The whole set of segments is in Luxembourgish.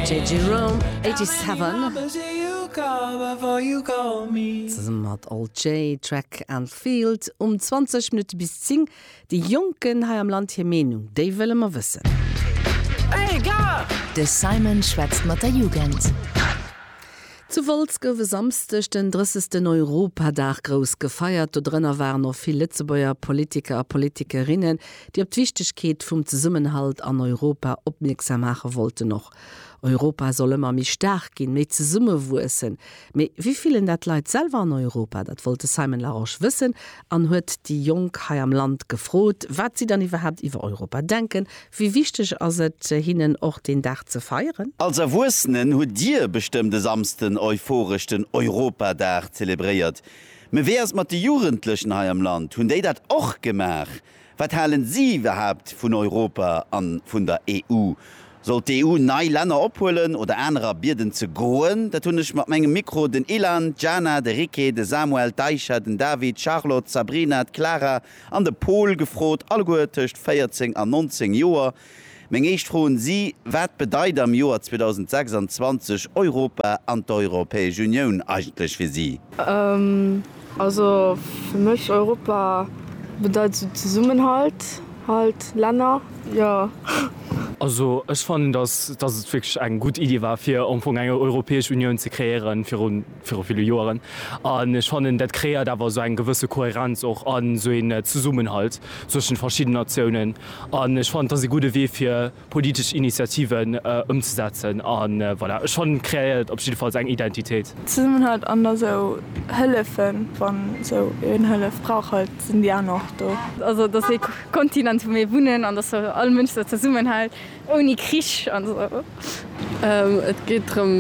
JJ Rohm, 87. Zesumme mat Al Jay, Track and Field um 20 Minutte bis 10. Déi Jonken hei am Land, hir Meenung, déi wëlle mer wëssen. De Simon schwätzt mat der Jugend. Zu Wolz gouf e Samsdeg den 30. Europadag grouss gefeiert. Do drënner waren och vill Lëtzebuerger Politiker a Politikerinnen, déi op d'Wichtegkeet vum Zesummenhalt an Europa opmierksam maache wollten. Och Europa soll ëmmer méi staark ginn, méi zesummewuessen. Mee wéi fillen dat d'Leit selwer an Europa? Dat wollt de Simon Larosche wëssen an huet déi Jonk hei am Land gefrot, wat si dann iwwerhaapt iwwer Europa denken. Wéi wichteg ass et hinnen och deen Dag ze feieren? Als Erwuessenen hutt Dir bestëmmt e Samsden euphoresch den Europadag zelebréiert. Mee wéi ass et mat de Jugendlechen hei am Land? Hunn déi dat och gemaach? Wat halen si iwwerhaapt vun Europa an vun der EU? Soll d'EU nei Länner ophuelen oder anerer bieden ze goen? Dat hunn ech mat mengem Mikro den Ilan, d'Jana, de Ricky, de Samuel, d'Aisha, den David, d'Charlotte, d'Sabrina, d'Clara an de Pol gefrot, alleguer tëscht 14 an 19 Joer. Meng éischt Fro un si, Wat bedeit am Joer 2026 Europa an d'Europäesch Unioun eigentlech fir si? Also fir mech Europa bedeit esou Zesummenhalt, Halt, Länner, jo. Also ech fannen, datt et wierklech eng gutt Iddi war, fir am Fong eng Europäesch Unioun ze kreéieren, virun. viru ville Joeren, an ech fannen dat kreéiert awer esou eng gewësse Kohärenz och an esou een Zesummenhalt zwëschen de verschiddenen Natiounen, an ech fannen et ass ee gudde Wee fir politesch Initiativen ëmzesetzen, a voilà, ech fannen et kreéiert op jiddefalls eng Identitéit. Zesummenhalt an esou Hëllefen, wann esou een Hëllef brauch halt, sinn déi aner och do. Also dass ee Kontinent wou mir wunnen, an dass all Mënsch esou zesummenhält. Ouni Krich an esou. Et geet drëm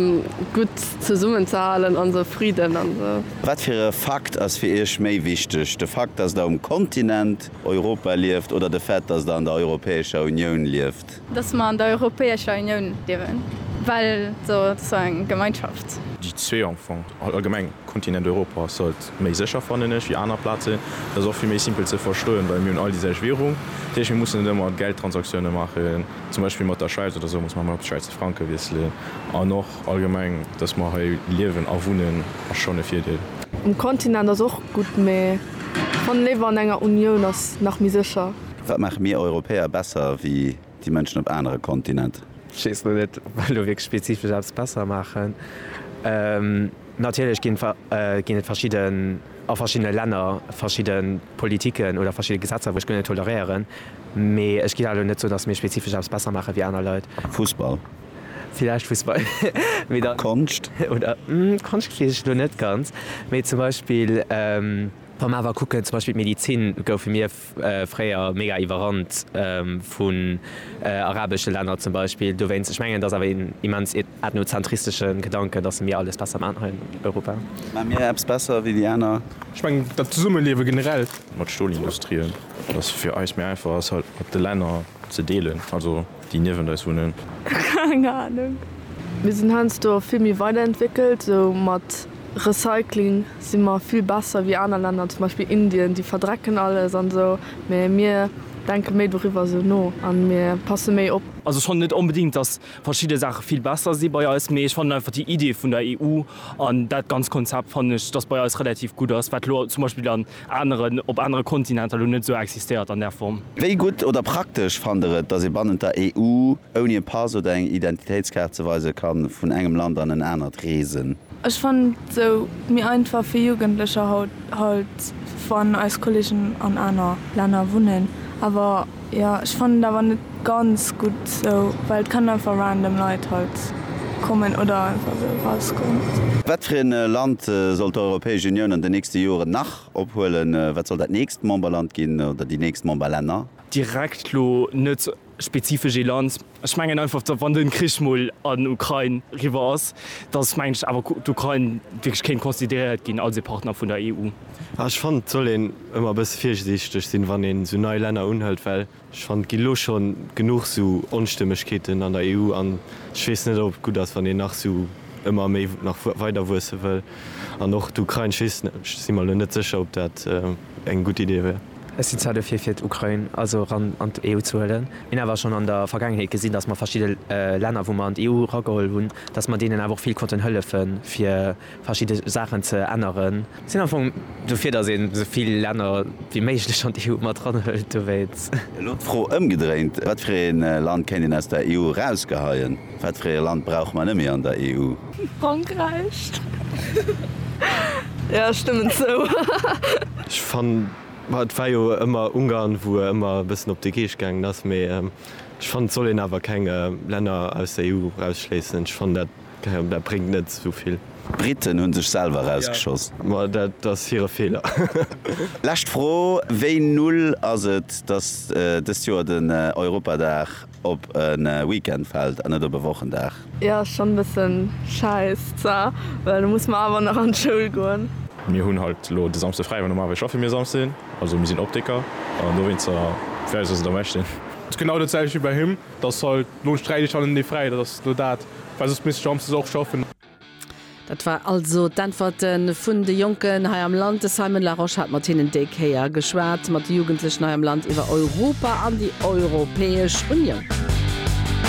gutt zesummen ze halen an esou, Fridden an esou. Wat fir e Fakt ass fir Iech méi wichteg, de Fakt, dass Der um Kontinent Europa lieft oder de Fait, dass Der an der Europäescher Unioun lieft? Dass mer an der Europäescher Unioun liewen, well esou, et ass eng Gemeinschaft. Déi zwee am Fong, allgemeng Kontinent Europa ass halt Méi sécher fannen ech wéi aner Plazen. Dat ass och vill méi simpel ze verstoen, well mir hunn all déi selwecht Währung. Dat heescht, mir mussen net ëmmer Geldtransaktiounen maachen, zum Beispill mat der Schwäiz oder sou muss mer ëmmer op Schwäizer Franke wiesselen. An och allgemeng, dass mer hei liewen a wunnen, ass schonn e Virdeel. Um Kontinent ass och gutt, mä ech fannen, léiwer an enger Unioun ass nach méi sécher. Wat maache mir Europäer besser wéi Déi Mënschen op anere Kontinent. Ech weess lo net, ob mer elo wierklech spezifesch eppes besser maachen. Natierlech ginn et verschidde, a verschiddene Länner verschidde Politiken oder verschidde Gesetzer, wou ech guer net toleréieren. Mee ech géif awer elo net soen, datt mir spezifesch eppes besser maache wéi aner Leit. Fussball? Villäicht Fussball, mee da. Konscht? Oder, Konscht weess ech elo net ganz. Mee zum Beispill, wa mer awer kucken, zum Beispill d'Medizin, goufe mir. fréier mega iwwerrannt vun arabesche Länner zum Beispill dowéinst. Ech mengen et ass awer een immens ethnozentristesche Gedanken, datt mir alles besser maachen hei an Europa. Maache mir eppes besser wéi déi aner? Ech mengen dat Zesummeliewe generell. Mat Stolindustrie, datt et fir eis méi einfach ass hatt mat de Länner ze deelen. Déi niewent eis wunnen. Keng Ahnung. Mir sinn heiansdo vill méi weiderentwéckelt. Sou mat Recycling si mer vill besser wéi aner Länner, zum Beispill Indien. Déi verdrecken alles an esou, mä mir denke méi doriwwer esou no a mir passe méi op. Also ech fannen net onbedingt, datt verschidde Saache vill besser si bei eis, mee ech fannen einfach déi Idee vun der EU an dat ganz Konzept fannen ech, datt bei eis relativ gutt ass, wat elo zum Beispill an aneren op anere Kontinenter elo net esou existéiert an där Form. Wéi gutt oder praktesch fannt Der et, datt ee bannent der EU ouni e Pass oder eng Identitéitskaart ze weise ka vun engem Land an en anert reesen? Ech fannen et esou méi einfach fir Jugendlecher haut, halt wann eis Kollegen an aner Länner wunnen, awer. Jo ech fannen et awer net ganz gutt sou, well et kann einfach random Leit halt kommen oder einfach sou erauskommen. Wat fir een Land soll d'Europäesch Unioun an den nächsten Joeren nach ophuelen? Wat soll dat nächst Memberland ginn oder déi nächst Memberlänner? Direkt lo net spezifesch ee Land. Ech mengen einfach, wann de Krich mol an d'Ukrain eriwwer ass, datt, mengen ech, awer d'Ukrain wierklech kéint consideréiert ginn als ee Partner vun der EU. Ah, ech fannen, et soll een ëmmer e bësse virsiichteg sinn, wann een esou nei Länner unhëlt, well ech fannen, et ginn elo schonn genuch esou Onstëmmegkeeten an der EU an ech weess net, ob et gutt ass, wann een nach esou ëmmer méi nach weider wuesse wëll. An och d'Ukrain, ech weess net, ech si mer elo net sécher, ob dat, eng gutt Idee wär. Ech sinn zwar dofir fir d'Ukrain also eran an d'EU ze huelen, minn awer schonn an der Vergaangenheet gesinn, datt mer verschidde Länner wou mer an d'EU erageholl hunn, datt mer deenen awer och vill konnten hëllefen fir verschidde Saachen ze änneren. Sinn am Fong dofir datt een esou vill Länner wéi méiglech an d'EU mat eran huelt, dowéinst. Elo d'Fro ëmgedréint, Wat fir ee Land kéint een aus der EU erausgeheien? Wat fir ee Land brauche mer net méi an der EU? Frankräich. Jo, ech stëmmen zou. Ech fannen, ma et war jo ëmmer Ungarn, wou e ëmmer e bëssen op de Geescht gaangen ass, mee ech fannen, et soll een awer keng Länner aus der EU erausschléissen. Ech fannen, dat, keine Ahnung, dat bréngt net esou vill. D'Briten hunn sech selwer erausgeschoss. Ma dat ass hire Feeler. Lescht Fro, Wéi null ass et, datt dëst Joer den Europadag Op e Weekend fällt an net op e Wochendag. Jo ass schon bessen scheiss za well du muss mar awer nach an d'schoul goen. Mir hunn halt elo de Samsde fräi, well normalerweis schaffe mir Samsden, also mir sinn Optiker an dowéinster fir eis ass et am beschten. Ass genau dat selwecht wéi bei him, dass halt lo sträich ech halt en Dee fräi, dat ass lo dat, well soss misst ech samsdes och schaffen. Dat war also d'Äntwerte vun de Jonken hei am Land. De Simon Larosche hat mat hinnen déi Kéier geschwat, mat de Jugendlechen hei am Land iwwer Europa an déi Europäesch Unioun.